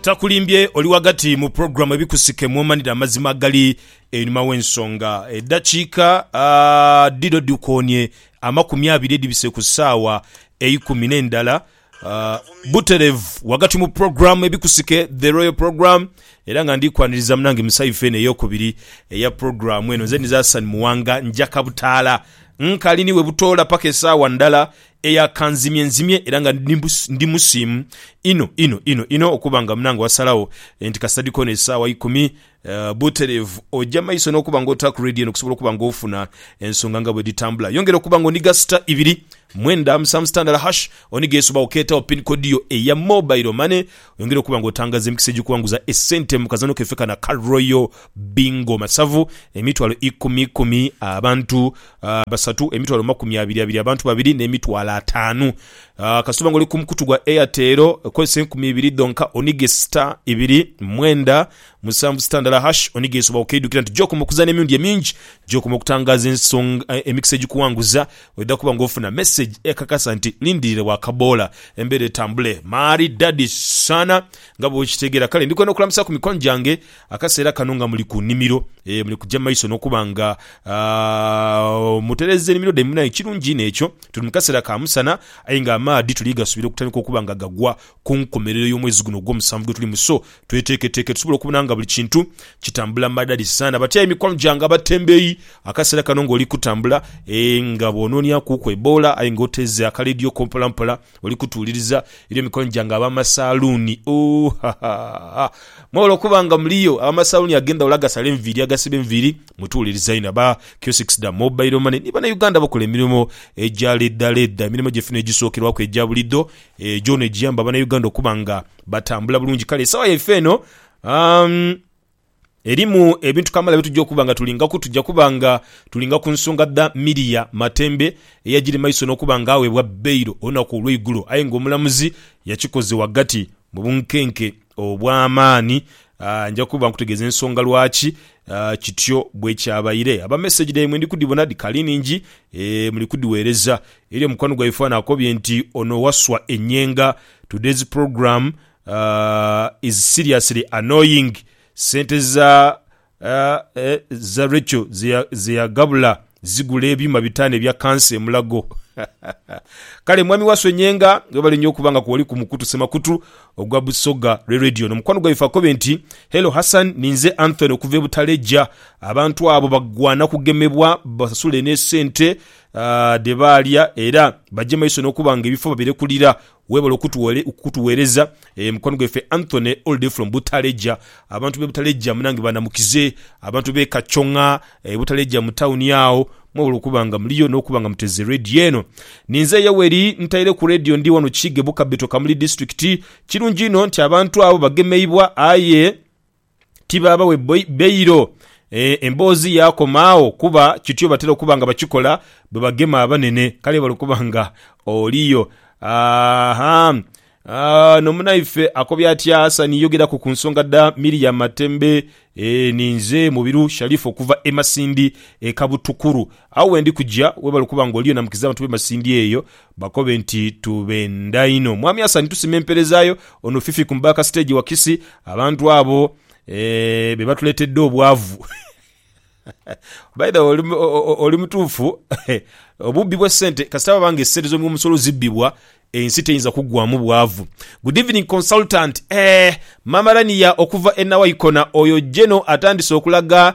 Takulimbye oli ghagati mu pulogulaamu Ebikusike mw'omanira amazima agali einhuma w'ensonga. Eddakiika dhino dhikoonie amakumi abiri edhibise ku ssaawa eikumi n'endala butereevu ghagati mu pulogulaamu Ebikusike, The Royal Program, era nga ndi kwaniriza munange Musaifu eno ey'okubiri eya pulogulaamu eno. Nze Nizaasani Muwanga, nja Kabutaala. Nkali ni we butoola paka esaawa ndala eyakanzimyenzimye era nga ndi musiimu inho inho inho inho okuba nga munange wasalagho nti kasita dhikoona esaawa ikumi butereevu oja maiso n'okuba nga otaaku Radio eno okusobola okuba nga ofuna ensonga nga bwedhitambula. Yongera okuba nga onigha star ibiri mwenda musanvu sitandala hash onigha esobagho keetagho pin kodi yo eya mobile money Yongera okuba nga otangaza emikisa egikuwanguza esente mu kazanho kaife kano aka Royal Bingo Masavu emitwalo ikumi ikumi abantu basatu, emitwalo makumi abiri abiri abantu babiri ne mitwalo ataanu. Kasita oba nga oli ku mukutu gwa Airtel kozesa enkumi ibiri dhonka onige star ibiri mwenda Musanvu sitandala hash onighe ensobi awokeidhukira nti gyokoma okuzaana emirundi emingi gyokoma okutangaaza ensonga emikisa egikuwanguza oidha kuba nga ofuna mesegi ekakasa nti lindirire wakaboola embeera etambule maari dadi saana nga bwokitegeera kale ndikwenda okulamusa ku mikwano gyange akaseera kano nga muli ku nimiro eeh muli kugya maiso nokuba nga aah mutereeza enimiro dhaimwe aye kirungi inho ekyo tuli mukaseera ka musana aye nga amaadhi tuli gasubira okutandika okuba nga gagwa ku nkomerero y'omwezi guno ogw'omusanvu gwe tulimu so tweteeketeeke tusobole okubona nga buli kintu kitambula madhali sana. Batya aye mikwano gyange abatembeeyi akaseera kano ng'oli kutambula ee nga bw'onoonyakuuku eboola aye ng'oteeze akaleediyo ko mpolampola oli kutuwuliriza. Eriyo mikwano gyange ab'amasaaluuni ooh hahaha mwebale okuba nga muliyo. Ab'amasaaluuni ag'endhawulo agasala enviiri, agasiba enviiri mutuwuliriza inho. Aba kiosks dha Mobile Money ni Bannayuganda abakola emirimo egya leedaleeda, emirimo gyaife n'egisookerwaku egya buliidho Ejo negiyamba Banauganda okuba nga batambula bulungi. Kale esawa yaife eno umm erimu ebintu kamala byetujja okuba nga tulingaku. Tujja kuba nga tulinga ku nsonga dha Miria Matembe eyajiri maiso nokuba nga awebwa bail olunaku olweigulo aye nga omulamuzi yakikoze wagati mu bunkenke. obw'amaani. Nja kuba nkutegeeza ensonga lwaki kityo bwe kyabaire. Aba meseji dhaimwe ndi kudhibona dhikali nhingi, muli kudhiweereza. Erio mukwano gwaife ghano akobye nti, Ono Wasswa Enyenga, today's program is seriously annoying. Sente za Za Rachel ze yaghabula zigula ebyuma bitaanu ebya kansa e Mulago. Kale Mwami Waswe Nyenga, webale nyo okuba nga kwoli ku mukutu semakutu ogwa Busoga lwe Radio. Ono mukwano gwaife akobe nti, Hello Hassan, ninze Anthony okuva e Butaleja. Abantu abo bagwana kugemebwa basasule ne sente dhe baalya era baje maiso nokuba nga ebifo babirekulira Webale okutuwereza mukwano gwaife Anthony all day from Butaleja abantu be Butaleja munange banamukize abantu be Kachonga Butaleja mu town agho mwebale okuba nga muliyo no kuba nga muteze radio eno ninze Yoweri ntaire ku radio ndi wano Kiige Bukabeto Kamuli district kirungi inho nti abantu abo bagemeibwa aye ti baaba we bbairo. Emboozi yaakoma agho kuba kityo batera okuba nga bakikola bwe bagema abanene. Kale bali okuba nga oli yo. Aha. Ono munaife akobye atya Hassan yogeraku ku nsonga dha Miriam Matembe. Ninze Mubiru Sharifa okuva e Masindi e Kabutukuru. Agho wendi kuja webali okuba nga oli yo namukiza abantu b'e Masindi eyo Bakobe nti tubenda inho. Mwami Hassan tusima empereza yo. Ono Fifi ku back stage wakisi abantu abo eeh bebatuletedde obwavu By the way oli mutuufu obubbi bwe sente kasita baba nga esente zo omusolo zibbibwa ensi teyinza kuggwamu bwavu. Good evening consultant eeh Mama Rania okuva e Nawaikona oyo Geno atandise okulaga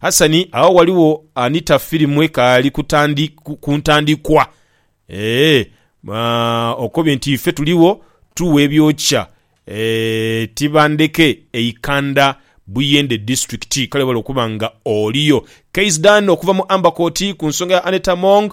Hasani, agho ghaligho anita firimu ekaali ku ntandikwa. Eeh, okobye nti ife tuligho tugha ebyokya e Tibandeke e Ikanda Buyende District. Kale webale okuba nga oliyo. Kaiz Dan okuva mu Amber Court ku nsonga ya Annet Among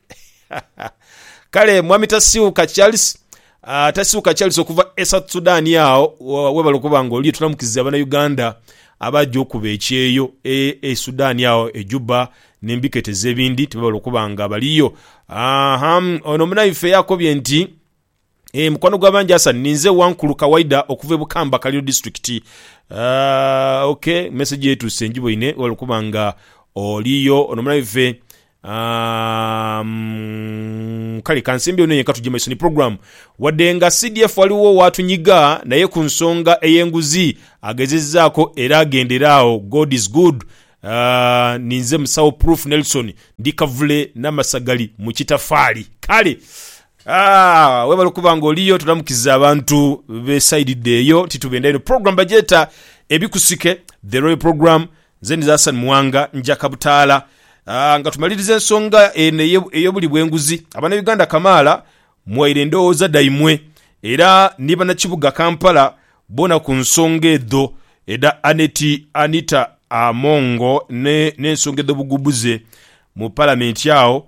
Kale Mwami Tasiuka Charles uh, Tasiuka Charles okuva e South Sudan agho webale okuba nga oliyo tunamukiza abana Uganda abaja okuba ekyeyo e, e Sudan agho e Juba nembiketeza ebindi tibabala okuba nga baliyo. Aha, ono munaife yakobye nti Eeh mukwano gwa bangi Hassan ninze Wankulu Kawaida okuva e Bukamba Kaliro District aah ok message yo etuuse njiboine webale okuba nga oliyo ono muna ife aah kale kansembyewo neye katuje maiso ni program wadde nga CDF waliwo owatunyiga naye ku nsonga eye nguzi agezezaako era agendere awo God is good aah ninze musawo Proof Nelson ndi Kavule Namasagali mu Kitafaali kale Aah webale okuba nga oliyo tulamukiza abantu be side dho eyo nti tubenda eno program bagyeta ebikusike the royal program nze ndi Hassan Muwanga nja Kabutaala aah nga tumaliriza ensonga eno eye- eyobuli bwenguzi abana Uganda kamaala mwaire endowooza dhaimwe era ni banakibuga Kampala bona ku nsonga edho edha Annet Anita Amongo ne n'ensonga edhobugubhuze mu palamenti agho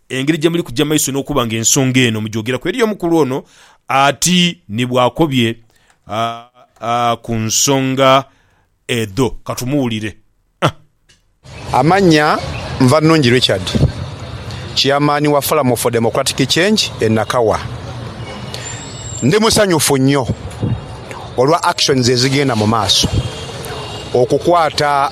Engeri gye muli kuja maiso n'okuba nga ensonga eno mugyogeraku eri omukulu ono ati ni bw'akobye ku nsonga edho. Ka tumuwulire. Amannya, Nvannungi Richard, Chairman wa Forum for Democratic Change e Nakawa. Ndi musanyufu nnyo olwa actions ezigenda mu maaso okukwata.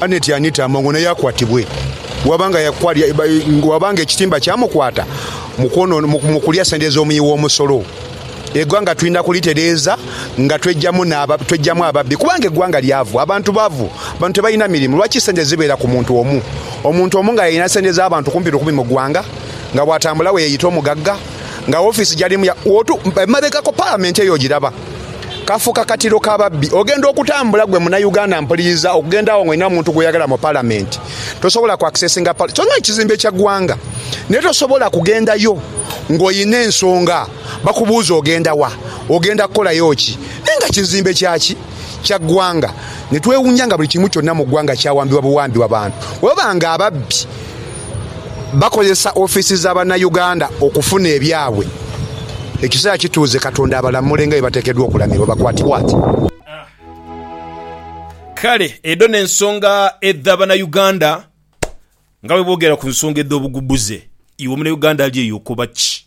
Annet yanitaama ng'ono yaakwatibwe. Bw'aba nga yakwalya, bw'aba nga ekitimba kyamukwata mu kwonoona, mu, mu kulya sente z'omuyii w'omusolo. Eighanga twidha kulitereeza nga tweijamu n'aba, tweijamu ababbi. Kubanga eighanga lyavu, abantu bavu, abantu tebalina mirimu. Lwaki sente zibeera ku muntu omu? Omuntu omu nga y'alina sente z'abantu kumpi lukumi mu gwanga, nga bw'atambula bwe yeeyita omugagga, nga wofiisi gy'alimu ya, wootu, emabegako Palamenti eyo ogiraba. kafuuka katiro ka babbi. Ogenda okutambula gwe munauganda mpuliriza okugenda awo nga olina omuntu gwoyagala mu palamenti tosobola ku accesinga palamenti kyona ekizimbe kya gwanga naye tosobola kugendayo nga olina ensonga bakubuuza ogenda wa ogenda kukolayo ki naye nga kizimbe kyaki kya gwanga netwewunya nga buli kimu kyona mu gwanga kyawambibwa buwambibwa bantu webaba nga ababbi. bakozesa ofiisi za Bannayuganda okufuna ebyabwe. Ekiseera kituuze Katonda abalamule nga bwe bateekeddwa okulamirwa. Bakwatibwa ati. Kale edho n'ensonga edha Bannayuganda nga bwe boogera ku nsonga edh'obugugbuze. Iwe Omunayuganda ali eyo okoba ki?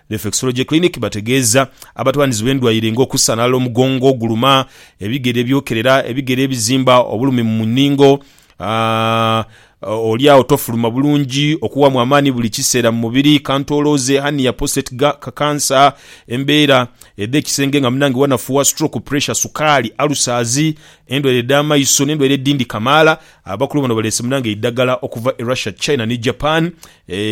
Reflexology Clinic bategeeza abatwanizi b'endwaire nga okusanalala omugongo oguluma, ebigere ebyokerera, ebigere ebizimba, obulumi mu nningo, oli agho tofuluma bulungi, okuwaamu amaani buli kiseera mu mubiri, kantoloze, hernia, prostate cancer, embeera edh'ekisenge nga munange wanafuwa, stroke, pressure, sukaali, ulcers, endwaire edh'amaiso n'endwaire edhindi kamaala. Abakulu bano baleese munange eidhagala okuva e Russia, China ni Japan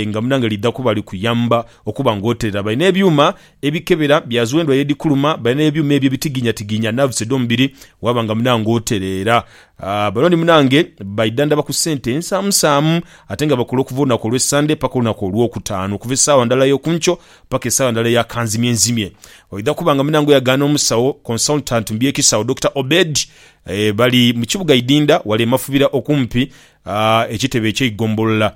nga munange lidha kuba likuyamba Okuba ng'oterera. Balina ebyuma ebikebera bya z'endhu aye edhikuluma. Balina ebyuma ebyo ebitigiinyatigiinya nerves edh'omubiri waaba nga munange otereera. Bano ni munange baidhandhaba ku sente ensaamusaamu ate nga bakola okuva olunaku olw'e Ssande paka olunaku Olwokutaanu, okuva esaawa ndala ey'oku nkyo paka esaawa ndala eya kanzimyenzimye. Oidha kuba nga munange oyagaana omusawo, consultant, mu by'ekisawo, Dokita Obed. Bali mu kibuga Idinda wale e Mafubira okumpi ekitebe eky'eigombolola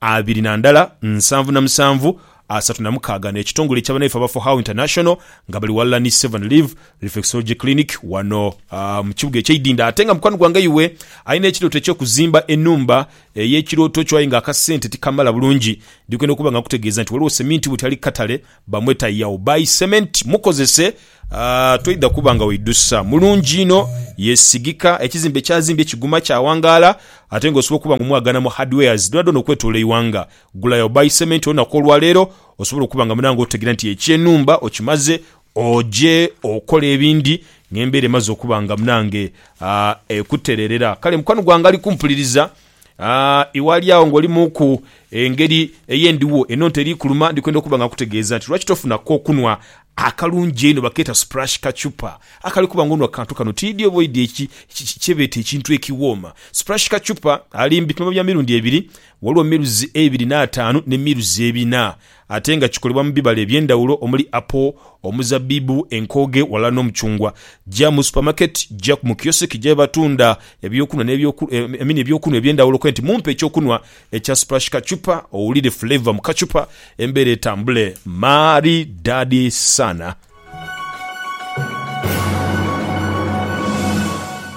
abiri na ndala nsanvu na musanvu asatu na mukaaga n'ekitongole ekya banaife aba For How International nga bali ghalala ni Seven Live Reflexology Clinic wano mu kibuga ekye Idinda ate nga mukwano gwange iwe alina ekirooto eky'okuzimba enhumba ey'ekirooto kyo aye nga akasente tikamala bulungi ndikwenda okuba nga nkutegeeza nti waliwo seminti bwoti ali kukatale Bamweta Yao by Cement mukozese toidha kuba nga oidhusa. Mulungi inho, yesigika, ekizimbe kyazimbye kiguma kyawangaala ate nga osobola okuba nga omwagana mu hardwares dhoonadhoona okwetoloola eighanga. Gula Yao by Cement olunaku olwaleero osobole okuba nga munange otegeera nti ekyenhumba okimaze oje okole ebindi ng'embeera emaze okuba nga munange ekutereerera. Kale mukwano gwange ali kumpuliriza. Aa, iwe ali agho ng'oli mu ku engeri ey'endigho, eno nte eri kuluma, ndi kwenda okuba nga nkutegeeza nti, lwaki tofuna k'okunhwa akalungi einho, bakeeta splash kachupa, akali kuba ng'onhwa ku kantu kano, tiidhi oba oidhi eki, ki, ki, kye beeta ekintu ekiwooma. Splash kachupa ali mbi, tuma bya mirundi ebiri, ghaligho miruzi eibiri n'ataanu ne miruzi ebina. Ate nga kikolebwa mu bibala eby'endhawulo omuli apo, omuzabbibu, enkooge ghalala n'omucungwa. Ja mu supamaketi, ja ku mu kiyosiki gy'abatunda eby'okunhwa n'eby'oku, I mean eby'okunhwa eby'endhawulo okobe nti, Mumpe eky'okunhwa ekya splash kachupa, owulire flavour mu kachupa, embeera etambule. Maaridaadi sana.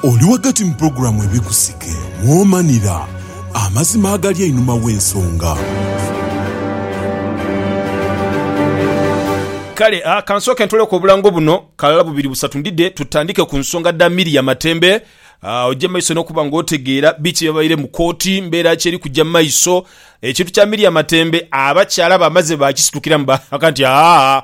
Oli ghagati mu pulogulaamu Ebikusike mw'omanira amazima agali einhuma w'ensonga. Kale a, ka nsooke ntooleku obulango buno kalala bubiri busatu ndidhe tutandike ku nsonga dha Milly Yamatembe. Oje mu maiso n'okuba nga otegeera biki ebyabaire mu kooti, mbeera ki eri kuja mu maiso. Ekintu kya Milly Yamatembe abakyala bamaze baakisitukiramu baaka nti, Haa,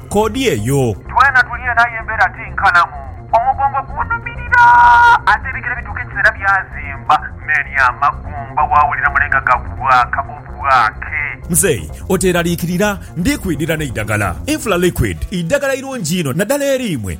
koodi eyo. Twena tuli eno aye embeera ti nkalamu. Omugongo gunhumirira ate ebigere bituuka ekiseera byazimba n'eri amagumba waawulira mulenga gakubwaka obwake. Muzeeyi oteeraliikirira, ndi kwidhira n'eidagala. Infra Liquid idagala irungi inho naddala eri imwe